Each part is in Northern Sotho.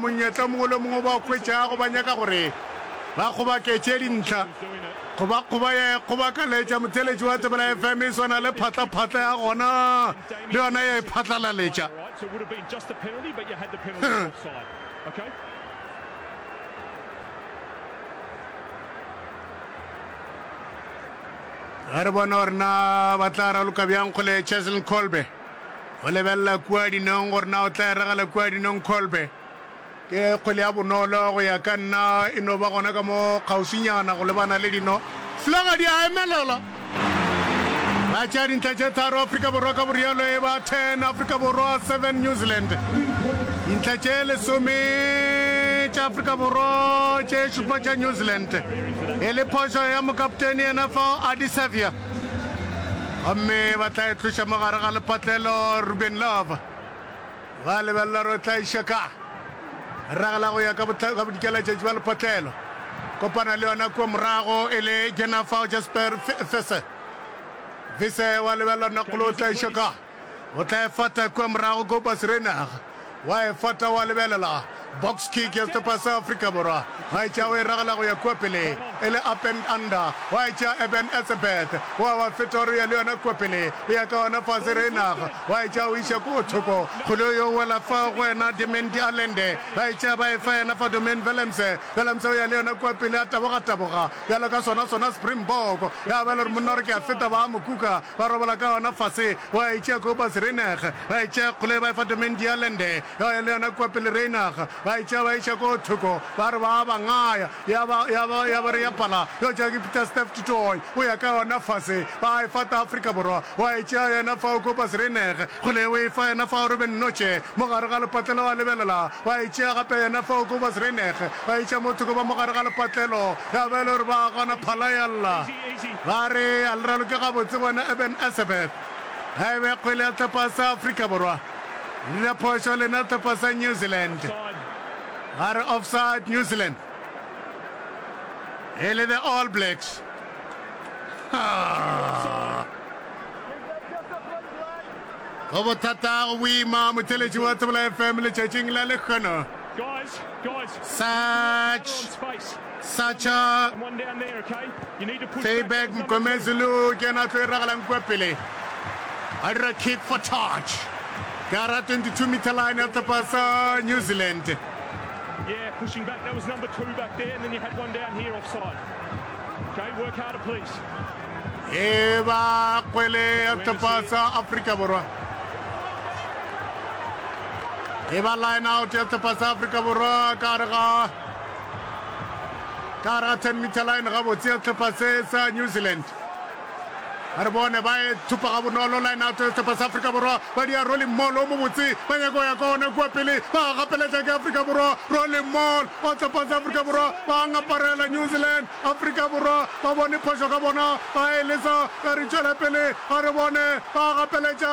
Monyetla mongwe le mongwe o ba o hwetšago ba nyaka gore ba kgobaketše dintlha go ba kgoba ya e kgobakaletša. Motheeletši wa Tsebela FM e swana le phatlaphatla ya gona le yona ya e phatlalaletša. Ga re bone gore na ba tla raloka bjang kgole Cheslin Kolbe. Go lebelela kua dinong gore na o tla eragela kua dinong Kolbe. Ke kgwele ya bonolo go ya ka nna e no ba gona ka mo kgauswinyana go lebana le dino. Slogadi a emelela. Ba tšea dintlha tše tharo Afrika Borwa ka borialo e ba 10 Afrika Borwa 7 New Zealand. Dintlha tše lesome tša Afrika Borwa tše šupa tša New Zealand e le phošo ya mokapteni yena fao Adisavia. Gomme ba tla e tloša mo gare ga lepatlelo, Ruben Love. Ba lebelela gore o tla iša ka. Ragela go ya ka bodikeletšatši ba lepatlelo. Kopana le yona kua morago e le Jennifer Jasper Vise. Vise wa lebelela Nokolo o tla iša ka. O tla efata kua morago Kobus Reinagh wa efata wa lebelela box kick ya sehlopha sa Afrika Borwa. Ba e tšea o e ragela go ya kua pele e le up and under. Wa e tšea Eben Etzebeth wa ba feta o re o ya le yona kua pele o ya ka gona fase. Reinagh wa e tšea o iša ko gothoko. Kgole yo o wela fa go wena Dimendi Allende. Ba e tšea ba e fa yena fa Domain Willemse. Willemse o ya le yona kua pele a taboga taboga bjalo ka sona sona Springbok. Ya ba e le gore monna o re ke a feta ba a mo kuka Ba robala ka gona fase, ba e tšea kua Basreinag, ba e tšea kgole, ba e fa domain Dialend, ya ya le yona kua pele Reinag, ba e tšea ba e iša koo thoko, ba re ba a ba ngaya, ya ba, ya ba, ya ba re ya pala, yo tšea ke Pietersdorp du Tooi, o ya ka yona fase, ba e fa ta Afrika Borwa, wa e tšea yena fao koo Basreinag, kgole o e fa yena fao Ruben Nnotše, mo gare ga lepatlelo a lebelela, ba e tšea gape yena fao koo Basreinag, ba e iša mo thoko ba mo gare ga lepatlelo, ya ba e le gore ba a gona, phala ya lla. Ba re a le raloke gabotse wena Eben Etzebeth. Ga e be kgwele ya tlhopha sa Afrika Borwa. Le dira phošo lena tlhopha sa New Zealand. Ba re offside New Zealand. E le the All Blacks. Haa. Go bothata go boima motheletši wa Tsebola FM letšatšing la lekgono. Search. Sacha Feyberg Mgomezi le o kena tlo iragalang kua pele a dira kick for touch ka ra 22 meter line ya sehlopha sa New Zealand Yeah, pushing back. That was number two back there, and then you had one down here offside. Okay, work harder, please. e ba kgwele ya sehlopha sa Afrika Borwa e ba line out ya sehlopha sa Afrika Borwa ka re ga ka gara 10 meter line gabotse ya sehlopha se sa new zealand a re bone ba e thupa ga bonolo line out ya sehlopha sa afrika borwa ba dia rolling mall o mobotse ba nyako ya ka one kua pele ba gapeletša ke afrika borwa rolling mall o sehlopha sa afrika borwa ba ngaparela new zealand afrika borwa ba bone phošo ka bona ba e lesa ba re tšwela pele a re bone ba gapeletša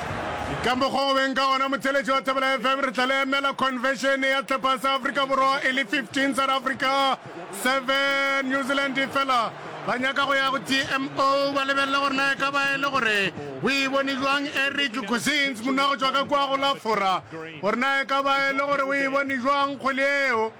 Ka mokgwa o beng ka gona, motheletši wa Thobela FM, re tla le emela Convention ya Tlhopha sa Afrika Borwa e le 15 South Africa, 7 New Zealand fela ba nyaka go ya go TMO ba lebelele gore na e ka ba e le gore o e bone jwang Eric Gosins, monna go tšwa ka kua go la Fora, gore na e ka ba e le gore o e bone jwang kgwele yeo.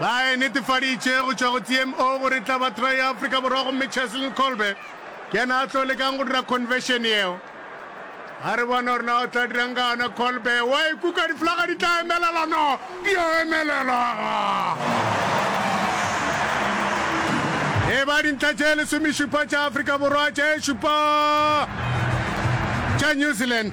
Ba e netefaditše go tšwa go CMO gore e tla ba try ya Afrika Borwa gomme Cheslin Kolbe ke yena a tlo lekang go dira conversion yeo. A re bona gore na o tla dirang ka yona Kolbe. Wa e kuka diflaga di tla emelela no di a emelelwa. E ba dintlha tše lesomešupa tša Afrika Borwa tše šupa tša New Zealand.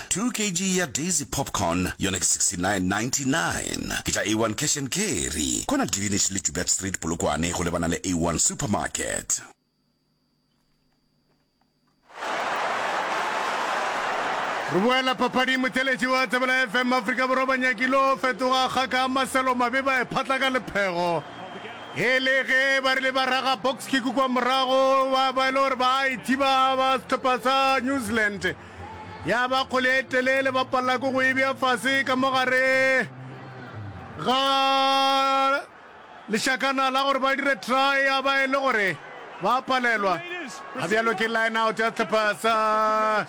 Two kg ya Daisy Popcorn yona ke 69.99. Ke tša A1 Cash and Carry, kwana Greenish le Joubert Street, Polokwane, go lebana le A1 Supermarket. Re boela papading. Motheletši wa Thebela FM Afrika Borwa ba nyakile go fetoga kgaka ya Marcelo Mabe ba e phatla ka lephego e le ge ba rile ba raga box kick kwa morago ba ba e le gore ba a e thiba ba sehlopha sa New Zealand. Ya ba kgole e telele, ba palelwa ke go e bea fase ka mo gare ga lešakana la gore ba dire try, ya ba e le gore ba a palelwa. A bjalo ke line out ya sehlopha sa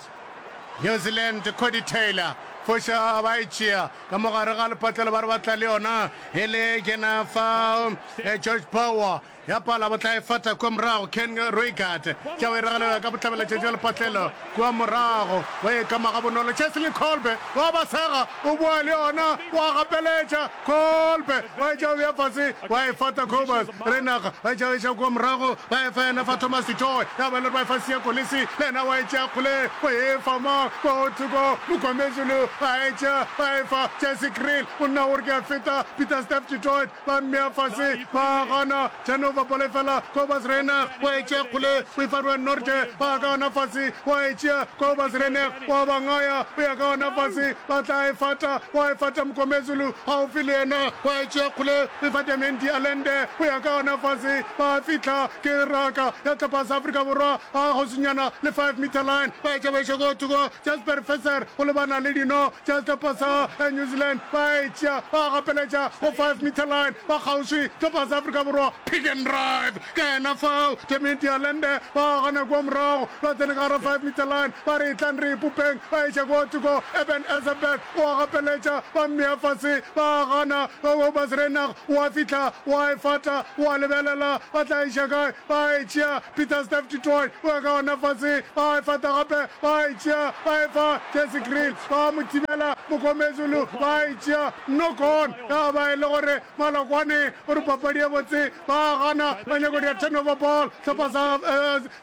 New Zealand, Cody Taylor foša ba e tšea ka mo gare ga lepatlelo ba re ba tla le yona e le Jennifer eh, George Power Ya pala bo tla e fata kua morago, Ken Roigard tša o e regelela ka botlabelatšatši wa lepatlelo kua morago, wa e kama gabonolo, Chesley Kolbe wa ba sega, o boa le yona, o a gapeletša, Kolbe wa e tšea o bea fase, wa e fata Cobus Reinach, ba e tšea ba iša kua morago, ba e fa yena fa Thomas du Toit, ya ba e le gore ba e fa Siya Kolisi, le yena wa e tšea kgole, o e fa mang, kwa go thoko, Mokomezulu a e tšea, ba e fa Jesse Kriel, monna o re ke a feta, Pieter-Steph du Toit, Ba mmea fase, ba a gana. Genova ball e fela, Cobus Reinach wa e tšea kgole, o e fa Ruan Nortje, ba a ka gana fase, wa e tšea Cobus Reinach wa ba ngaya, o ya ka gana fase, ba tla e fata, wa e fata Mngomezulu gaufi le yena, wa e tšea kgole, o e fa Damian de Allende, o ya ka gana fase, ba a fihla, ke raka ya tlhopha sa Afrika Borwa, a kgauswinyana le five meter line, ba e tšea ba e šwa ko thoko, Jasper Visser o lebana le dino, Chester pasa ya New Zealand ba e tšea ba gapeletša go five meter line ba kgauswi tlhopha sa Afrika Borwa pick and drive ke yena fao Temmie Dialende ba gana kua morago ba tsene ka gara five meter line ba re tlang re ipopeng ba eša kua thoko Eben Etzebeth o a gapeletša ba mmea fase ba gana Obasrenag o a fihla o a e fata o a lebelela ba tla eša kae ba e tšea, Pietersdorp du Toit o eka ona fase, ba e fata gape, ba e tšea, ba e fa Jesse Kriel, ba mo thibela, Mokomezulu ba e tšea, knock on, ya ba e le gore Malokwane o re papadi e botse, ba gana, ba nyako dia turnover ball, hlopha sa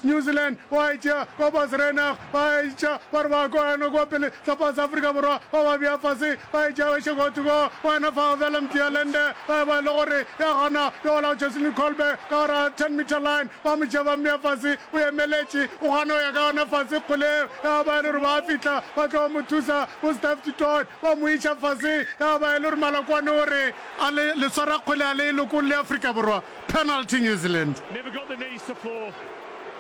New Zealand, ba e tšea, Kobus Reinach, Ba etša ba re ba kwa yana kwa pele sa pa sa Afrika Borwa ba ba bea fase ba etša ba še go thoko kwa yana fa fela Mthialend ba e ba le gore ya gona yo ola Jocelyn Kolbe ka gore a 10 meter line ba mo tšea ba mmea fase o emeletše o gana ya ka yona fase kgole ya ba le gore ba fitla ba tlo mo thusa bo Steph Titot ba mo etša fase ya ba le gore Malakwane o re a le le swara kgole a le lokong le Afrika Borwa penalty New Zealand Never got the knees to floor.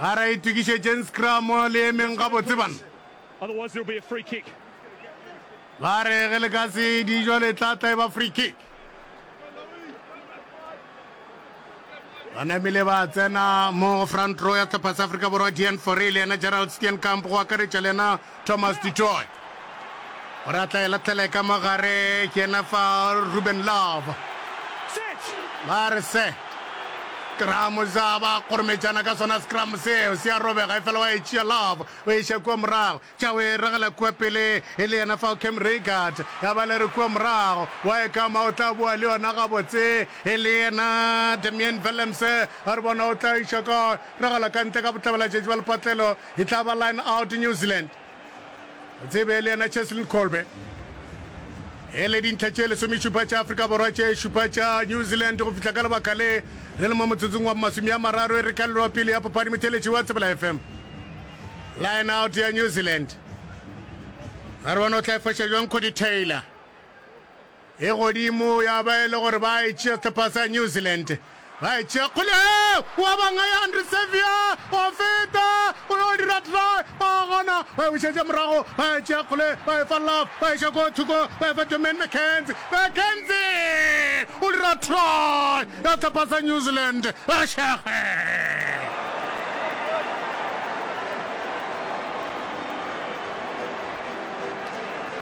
Ga ra itokišetšeng scrum le emeng gabotse bana. Otherwise there'll be a free kick. Ba re ge le ka se di jwale tla tla e ba free kick. ba namile ba tsena mo front row ya sehlopha sa Afrika Borwa Dean Fourie le yena Gerald Steenkamp go akaretša le yena Thomas du Toit o re a tla e latlhele ka mo gare ke ena fa Ruben Love ba re se scrum sa ba kgorometšana ka sona scrum seo se a robega e fela wa e tšea Love o e iša kua morago tša o e regela kua pele e le yena fao Cam Rickard ya ba le re kua morago wa e kama o tla boa le yona gabotse e le yena Damian Willems a re bona o tla iša ka regela ka ntle ka botlabela tšatši ba lepatlelo E tla ba line out New Zealand. O tsebe le yena Cheslin Kolbe. E le dintlha tše lesomešupa tša Afrika Borwa tše šupa tša New Zealand go fihla ka lebaka le re le mo motsotsong wa masome a mararo e re ka leloa pele ya pophadi motheletši wa Tsebela FM. Line out ya New Zealand. Ga re bone o tla e foša jwang Cody Taylor. E godimo, ya ba e le gore ba e tšea sehlopha sa New Zealand. Ba e tšea kgole, o a banga ya Andre Saviour, o a feta, o yo dira try, ba gona, ba e bušetša morago, ba e tšea kgole, ba e fa Love, ba e xa ko thoko, ba e fa Jermaine McKenzie, McKenzie! O dira try ya sehlopha sa New Zealand, ba šege!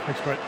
Thanks, Brett.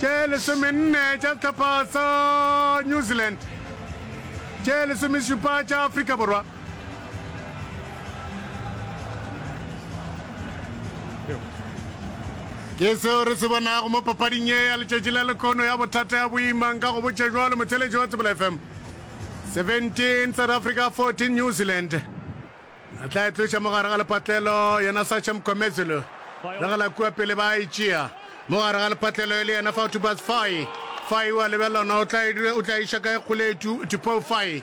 tše lesomenne tša sehlopha sa New Zealand, tše lesomešupa tša Afrika Borwa. Ke seo re se bonago mo papading ye ya letšatši la lekono ya bothata ya boimang ka go botša jwalo motheletši wa Tsebela FM. 17 South Africa 14 New Zealand. A tla e tloša mo gare ga lepatlelo, yena Sacha Mkhwemezulu. Le ge la kua pele ba a e tšea. Mo gare ga lepatlelo e le yena fao Tubas Fai. Fai o a lebelelwa na o tla e, o tla e iša kae kgole e tu, Tupou Fai.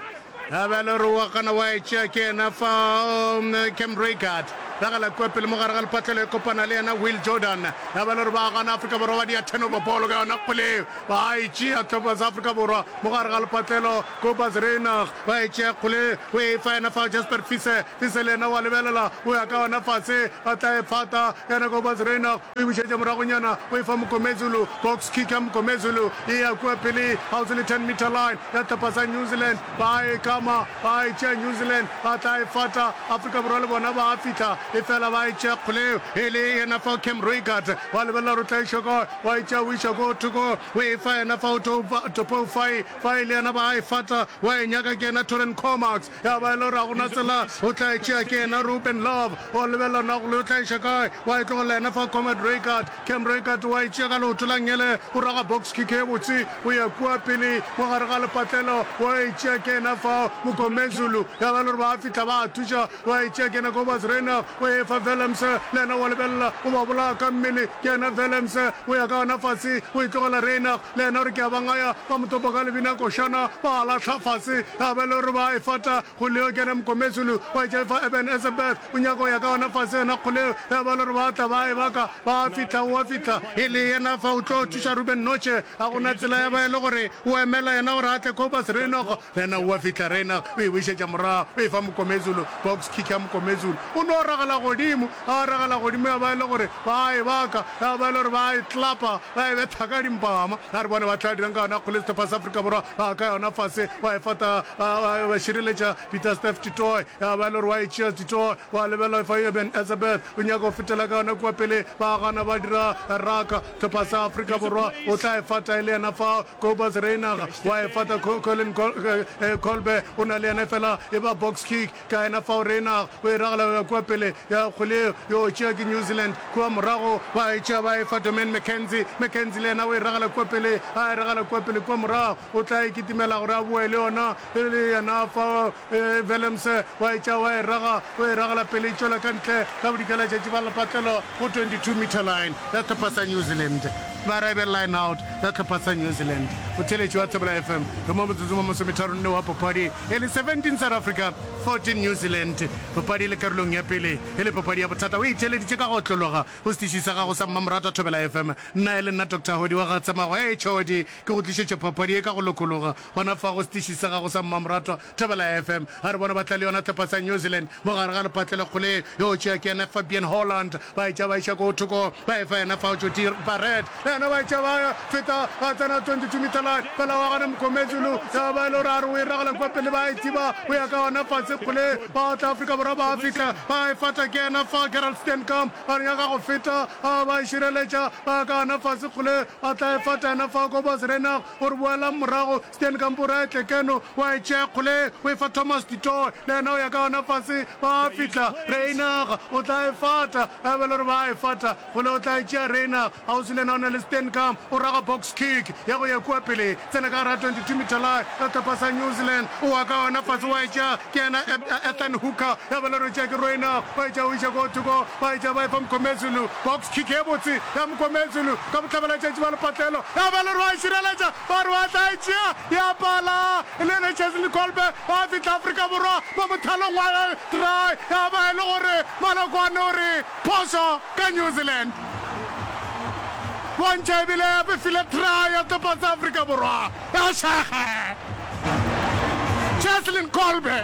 A be a le gore o a gana, wa e tšea ke yena fao Cam Reigard. Le ge la kua pele mo gare ga lepatlelo e kopana le yena Will Jordan. A be a le gore ba a gana, Afrika Borwa ba dia turnover ball ka yona kgole eo. Ba a e tšea Tubas Afrika Borwa mo gare ga lepatlelo. Kobus Reinach ba e tšea kgole, o e fa yena fao Jasper Fise. Fise le yena o a lebelela, o ya ka yona fase, a tla e fata. Yena Kobus Reinach o e bušetša moragonyana, o e fa Mngomezulu. Box kick ya Mngomezulu e ya kua pele kgauswi le ten metre line ya sehlopha sa New Zealand. Ba a e kama, ba a e tšea New Zealand, ba tla e fata. Afrika Borwa le bona ba a fihla, efela ba e tšea kgole, e le yena fao Cam Roigard. O a lebelela gore o tla e šoka, o a e tšea o e iša ko thoko, o e fa yena fao Topou Fai. Fa e le yena ba a e fata, wa e nyaka ke yena Toren Comax. Ya ba e le gore ga go na tsela, o tla e tšea ke yena Ruben Love. O lebelela na go le o tla iša kae, wa e tlogelela yena fa Comrade Reichard. Cam Reichard wa e tšea ka leoto la ngele, o raga box kick e botse, o ya kua pele mo gare ga lepatlelo, wa e tšea ke yena fao Mngomezulu. Ya ba e le gore ba a fihla ba a thuša, wa e tšea ke yena Cobus Reinagh, o e fa Willemse, le yena wa lebelela, o ba bolaya ka mmele ke yena Willemse. O ya ka yona fase, o e tlogela Reinagh. Le yena o re, Ke a ba ngaya, ba mo topa ka lebinakošana, ba a lahla fase. Ge a ba e le gore ba a e fata, Kgoleo ke yena mokometsulu, wa e tšaifa Eben Ezebeth, o nyaka go ya ka yona fase, yena Kgoleo. Ge a ba e le gore ba a tla, ba a e baka, ba a fihla, o a fihla. E le yena fa o tlo thuša Ruben Noche, ga go na tsela ya ba e le gore o emela yena gore a tle Cobus Reinokgo. Yena o a fihla, Reina o e bušetša morago, o e fa Mokomezulu. Box kick ya Mokomezulu. O no ragela godimo, a ragela godimo, ya ba e le gore ba a e baka, ya ba e le gore ba a e tlapa, ba e betha ka dimpama. A re bone ba tla dirang ka yona kgole sehlopha sa Afrika Borwa. Ba ka yona fase, wa e fata, ba, ba, ba šireletša Pieter-Steph du Toit, ya ba e le gore wa e tšea du Toit, wa lebelela fa Eben Etzebeth o nyaka go fetela ka yona kua peleng, ba gana ba dira raka. Sehlopha sa Afrika Borwa o tla e fata e le yena fao, Kobus Reinagh wa efata, Colin Kolbe o na le yena efela e ba box kick ka yena fao. Reinagh o e ragela go ya kua pele ya kgole yo o tšea ke New Zealand kua morago ba e tšea ba e fa Domaine McKenzie. McKenzie le yena o e ragela kua pele, a e ragela kua pele kua morago o tla e kitimela gore a boe le yona e le yena fao. Willemse wa e tšea, wa e raga, o e ragela pele e tšwela ka ntle ka bodika la tšatši ba lepatlelo go 22 metre line ya hlopha sa New Zealand. Ba ra e be line out ya hlopha sa New Zealand. Motheeletši wa Thobela FM re mo motsotsong wa masometharonne wa papadi e le 17 South Africa, 14 New Zealand. Papadi e le karolong ya pele e le papadi ya bothata. O itheeleditše ka go otlologa go setiši sa gago sa mmamoratwa Thobela FM. Nna e le nna Doctor Hodi wa ga Tsamago. Hei Chodi, ke go tlišetše papadi ye ka go lokologa. Gona fa go setiši sa gago sa Mmamoratwa Thobela FM, a re bona ba tla le yona tlhopha sa New Zealand mo gare ga lepatle le kgole. Yo o tšea ke yena Fabian Holland, ba etša ba iša ko thoko ba efa yena fao Jodie Barrett le yena ba etša ba feta ba tsena 22 meter line. Fela wa gona Mgomezulu ya ba e le gore a re o e ragela kwa pele ba e thiba go ya ka gona fase kgole. Ba tla Afrika Borwa ba fihla ba e fata ke yena fa Gerald Steenkamp a nyaka go feta a ba e šireletša ba ya ka gona fase kgole ba tla e fata yena fa Kobus Reinagh O re boelang morago, Stan, kampo o re a etle keno, wa e tšea kgole ye, o e fa Thomas du Toit, le yena o ya ka yona fase, ba fihla Reinach, o tla e fata, ge a be e le gore ba a e fata, kgole o tla e tšea Reinach, kgauswi le yena o na le Steenkamp, o raga box kick, ya go ya kua pele, e tsena ka gare ga 22 meter line, ya topa sa New Zealand, o wa ka yona fase, wa e tšea, ke yena Ethan Hooker, ya be e le gore o tšea ke Reinach, wa e tšea o iša ko thoko, ba etša ba epa Mkomezulu, box kick ye botse ya Mkomezulu ka botlabalatšatši ba lepatlelo, ya ba le Roa e šireletša, ba Roa tla e tšea, ya pala e le yena Cheslin Kolbe wa fihla Afrika Borwa mo mothalong wa gage, try ya ba e le gore Malokwane o re phošo ka New Zealand, bontšha ebile ya befile try ya topatsa Afrika Borwa. Bašaga Cheslin Kolbe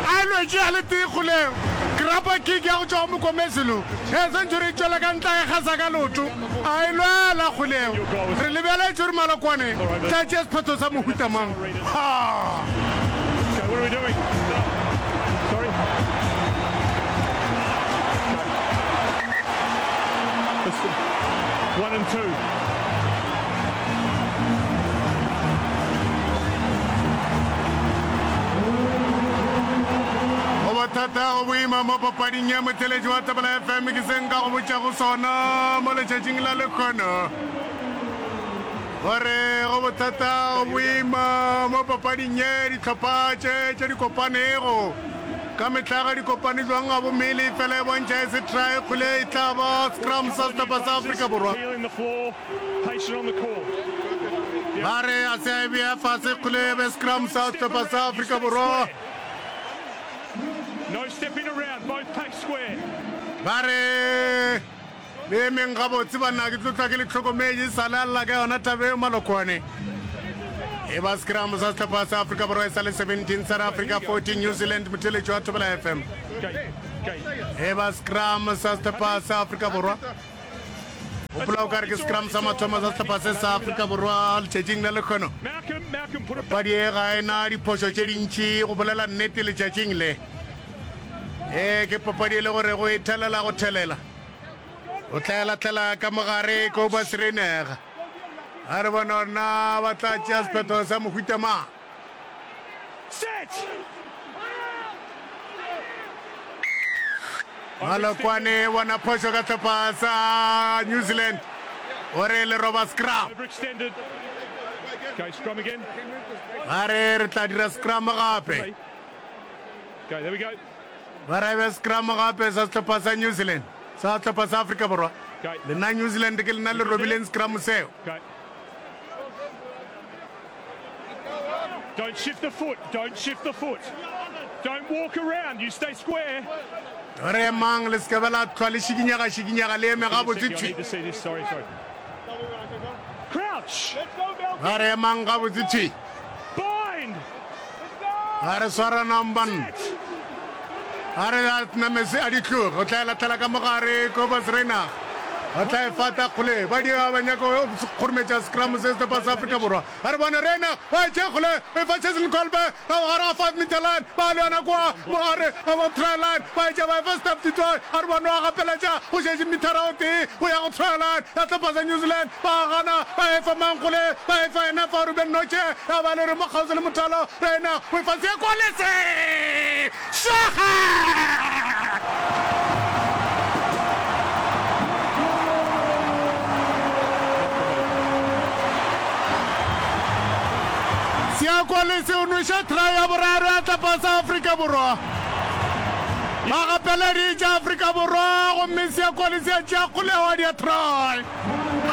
a e lwetše a le tee kgoleng grappa kick ya go tšwa go Mokomezulu ge century e tšwela ka ntla ga gasa ka loto a e lwela kgoleng. Re lebeletše gore Malokwane tla tšea sephetho sa mohuta mang. Ha! One and two. go bothata go boima mo papading ya motheletši wa tabela fm ke se nka go botša go sona mo letšatšing la lekgono gore go bothata go boima mo papading ye dihlopha tše tše di kopanego Ka mehla ga di kopane jwang gabo mele efela e bontšha e se try kgole e tla ba scrum sa sehlopha sa Afrika Borwa. Ba re a se a e bea fase kgole e be scrum sa sehlopha sa Afrika Borwa. Ba re. Le emeng gabotse banna, ke tlo tla ke le tlhokometše. E sa le a lla ka yona taba eo Malokwane. E ba scrum sa sehlopha sa Afrika Borwa e sa le 17 South Africa 14 New Zealand motheletši wa Thobela FM. E ba scrum sa sehlopha sa Afrika Borwa. Gopola o ka re ke scrum sa mathomo sa sehlopha se sa Afrika Borwa letšatšing la lekgono. Padi e ga e na diphošo tše dintši go bolela nnete letšatšing le. E ke papadi e le gore go e thelela go thelela. o tla latlela ka mogare kobas reinega a re bona gore na ba tla tšea sephetho sa mohuta mang malokwane bona phošo ka tlhopha sa new zealand o re le roba scrum a re re tla dira scrum gape Ba raibe sekramo gape sa sehlopha sa New Zealand sa sehlopha sa Afrika Borwa. Lena New Zealand ke lena le robileng sekramo seo. Don't shift the foot, don't shift the foot. Don't walk around, you stay square. Re emang le seke ba la tlhwa le šikinyega šikinyega le eme ga botse thwi. Crouch. Ba re emang ga botse thwi. ga re swaranang banna a re a namese a di tloge o tla e latlhela ka mogare cobas reina o tla e fata kgole ba di ba nyaka go kgorometša scrum se setepa sa afrika borwa a re bone reina ba e tšhe kgole e fa chesil colbe ka mogare ga five meter line ba le yona kwa mogare ga ba try line ba e tšha ba e fa step titoy a re bone wa gapeletša go šetše mithara o tee go ya go try line ya setepa sa new zealand Ba gana, ba efa mang kgole, ba efa yena fa Ruben Noche, ya ba le re mo kgauswi le mothalo, Reina, o efa se kwa le se! Swaga! Sea kwa le se o nweša try ya boraro ya tlapa sa Afrika Borwa. Ba gapeleditša Afrika Borwa gomme Sea kwa le se a tšea kgolego ya try.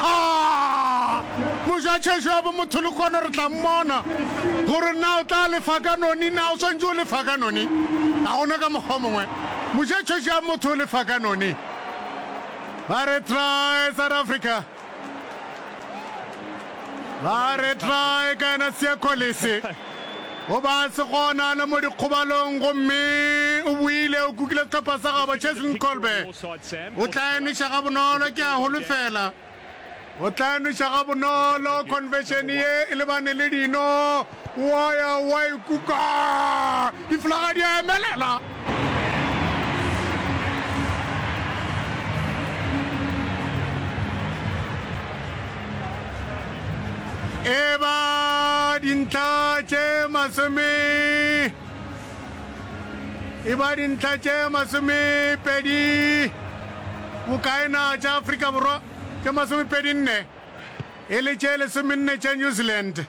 Haa! Mojatšhešo ya bomotho le kona re tla mmona gore na o tla lefa ka noni na. O swantše o lefa ka noni, ga gona ka mokgwa o mongwe. Mojatšhešo ya motho o lefa ka noni. Ba re try South Africa. Ba re try ka yena Siya Kolisi. O ba se gona le mo dikgobalong gomme o buile o kukile sehlopha sa gabo Cheslin Kolbe. O tla e nweša gabonolo, ke a holofela. O tla e nweša gabonolo. Khonfešene ye e lebane le dino. Wa ya wa e kuka. Difulaga di a emelela. E ba dintlha tše masome. e ba dintlha tše masomepedi bokae na? Tša Afrika Borwa tše masomepedi nne e le tše lesomenne tša New Zealand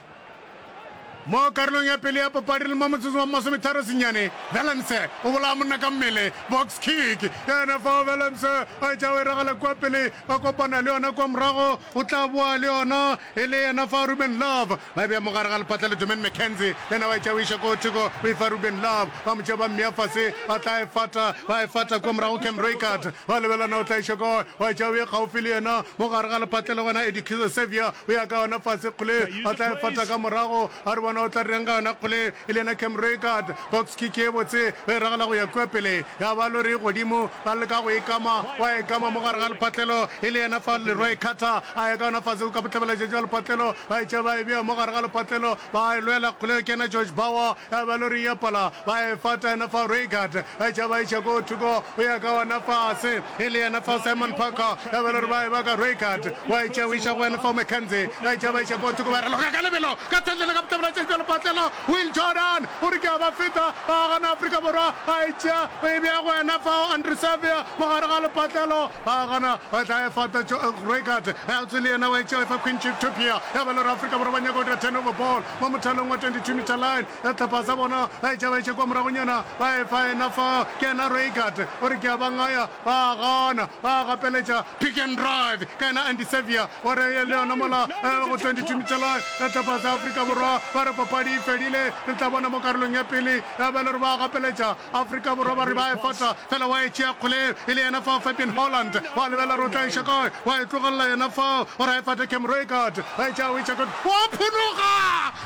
mo karolong ya pele ya papadi le mo motsotso wa masometharo senyane. Valence o bolaya monna ka mmele, box kick yena fao. Valence a etša o e ragela kua pele, ba kopana le yona kua morago, o tla boa le yona e le yena fa Ruben Love Ba bea mogare ga lepatla le Domaine McKenzie, yena wa e tšea o iša ko theko, o e fa Ruben Love, ba mo tšea ba mmea fase, ba tla e fata, ba e fata kua morago go Cam Reichardt, ba lebelela na o tla iša kae, wa e tšea o e gaufi le yena, mo gare ga lepatla le gona Eddie Kizo Saviour o ya ka yona fase kgole, ba tla e fata ka morago, a re bona o tla direng ka yona kgole, e le yena Cam Reichardt. Box kick ye botse ge e ragela go ya kua pele ya ba lori godimo, ba leka go e kama, wa e kama mo gare ga lepatlelo e le yena fa Leroy Carter a ya ka yona fase go ka botlabelaja jwa lepatlelo, ba e tšea ba e bea mo gare ga lepatlelo, ba e lwela kgole go kena George Bauer ya ba lori ya pala, ba e fata yena fa Reigard ba e tšea ba e iša ko thoko go ya ka yona fase e le yena fa Simon Parker ya ba lori ba e baka Reigard wa e tšea o iša go yena fa McKenzie ba e tšea ba iša ko thoko ba raloka ka lebelo ka thatlele ka botlabelaja jwa lepatlelo. Will Jordan o re ke a ba feta, ba gana Afrika Borwa ba e tšea, o e bea go ena fao, Andre Savea mo gare ga lepatlelo, ba gana ba tla e fata, Joe Gregat Eltsy le yena o e tšea, efa Quincy Tupia, ya ba e le gore Afrika Borwa ba nyaka go dira turnover ball mo mothalong wa 22 metre line ya Tlhapasa, bona ba e tšea ba e tšea kwa moragonyana, ba e fa ena fao, ke ena Reigat o re ke a ba ngaya, Ba a gana, ba a gapeletša pick and drive ka yena Andy Saviour wa re le yona mola go 22 Michelai ya Tlhopha tsa Afrika Borwa ba re papadi e fedile. Re tla bona mo karolong ya pele ya ba le gore ba a gapeletša Afrika Borwa ba re ba e fata fela wa e tšea kgoleng e le yena fao Fabian Holland wa lebelela gore o tla iša kae wa e tlogelela yena fao gore a e fate Cam Roigard ba e tšea Wicacot wa phunuga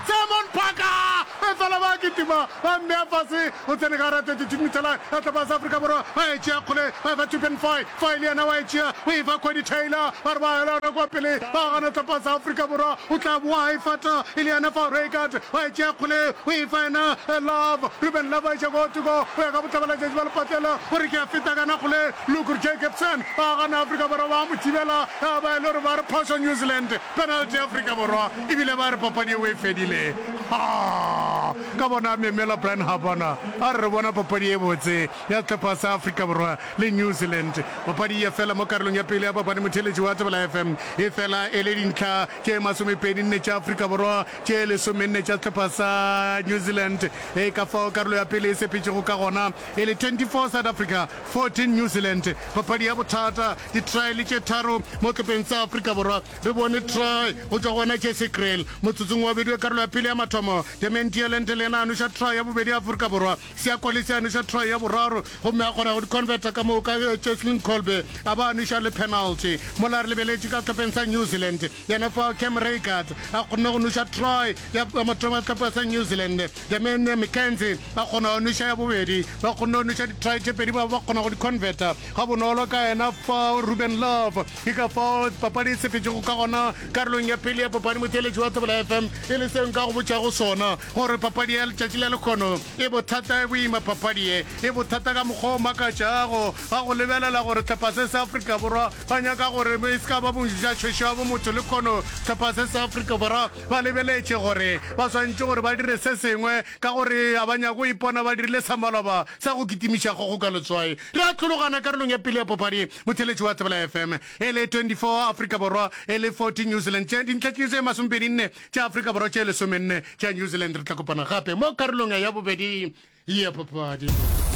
Simon Parker efela ba kitima ba mmea fase o tsene ka gare a 32 metre line ya tlhopha ya sa Afrika Borwa ba e tšea kgole ba efa Tupen Foy Foy le yena wa e tšea o efa Cody Taylor ba re ba elana kwa pele ba gana tlhopha ya sa Afrika Borwa o tla boa a e fata e le yena Fao Reigard wa e tšea kgole o efa yena Love Ruben Love a iša kwa gothoko o ya ka botlabalatšatši ba lepatlela o re ke a feta kana kgole Lukur Jacobson ba gana Afrika Borwa ba mo thibela ya ba e le gore ba re phošo New Zealand penalty ya Afrika Borwa E bile ba re papadi yeo e fedile. Ha! Ka bona Memela Brian Habana a re re bona papadi ye botse ya sehlopha sa Afrika Borwa le New Zealand. Papadi ya fela mo karolong ya pele ya bapadi motheeletši wa Tsebela FM e fela e le dintlha tše masomepedi nne tša Afrika Borwa, tše lesomenne tša sehlopha sa New Zealand. E ka fao karolo ya pele e sepetšego ka gona e le 24 South Africa, 14 New Zealand. Papadi ya bothata, ditraele tše tharo mo sehlopeng sa Afrika Borwa. Re bone try go tšwa go wena Jesse Kriel motsotsong wa bobedi we karolo ya pele ya mathomo. Damian Tielente le yena a noša try ya bobedi ya Afrika Borwa. Siya Kolisi a noša try ya boraro gomme a kgona go di converter ka moka ge Cheslin Kolbe a ba a noša le penalty. Mola re lebeletše ka sehlopheng sa New Zealand, yena fao Cam Reigaard a kgonne go noša try ya mathomo ya sehlopha sa New Zealand. Damian McKenzie a kgona go noša ya bobedi. Ba kgonne go noša di try tše pedi ba ba kgona go di converter gabonolo ka yena fao Ruben Love. Ke ka fao papadi e sepetšego ka gona karolong ya pele ya papadi. Motšweletši wa Thobela FM, e le seo nka go botšago sona, gore papadi ya letšatši la lekgono e bothata, e boima. Papadi ye e bothata ka mokgwa o makatšago, ga go lebelela gore sehlopha se sa Afrika Borwa ba nyaka gore e se ka ba bontšhašošo ya bomotho. Lekgono sehlopha se sa Afrika Borwa ba lebeletše gore ba swanetše gore ba dire se sengwe, ka gore ga ba nyake go ipona ba dirile sa maloba sa go kitimiša kgogo ka letswai. Re a hlologana karolong ya pele ya papadi. Motheletši wa Tsebela FM e le 24 Afrika Borwa e le 40 New Zealand tše dintlha tše tše masomepedi nne tša Afrika Borwa tše lesome nne tša New Zealand. Re tla kopana gape mo karolong ya bobedi ya papadi.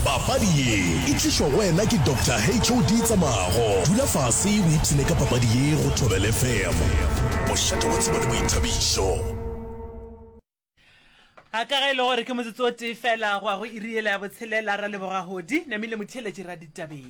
Papadi ye e tlišwa go wena ke Doctor HOD Tsamago. Dula fase o ipshine ka papadi ye go Thobel FM. Bošate wa tsebo le boithabišo. a ka ge e le gore ke motsotso o tee fela go ya go iriela ya botshelela ra leboga godi namile motheletši ra ditabeng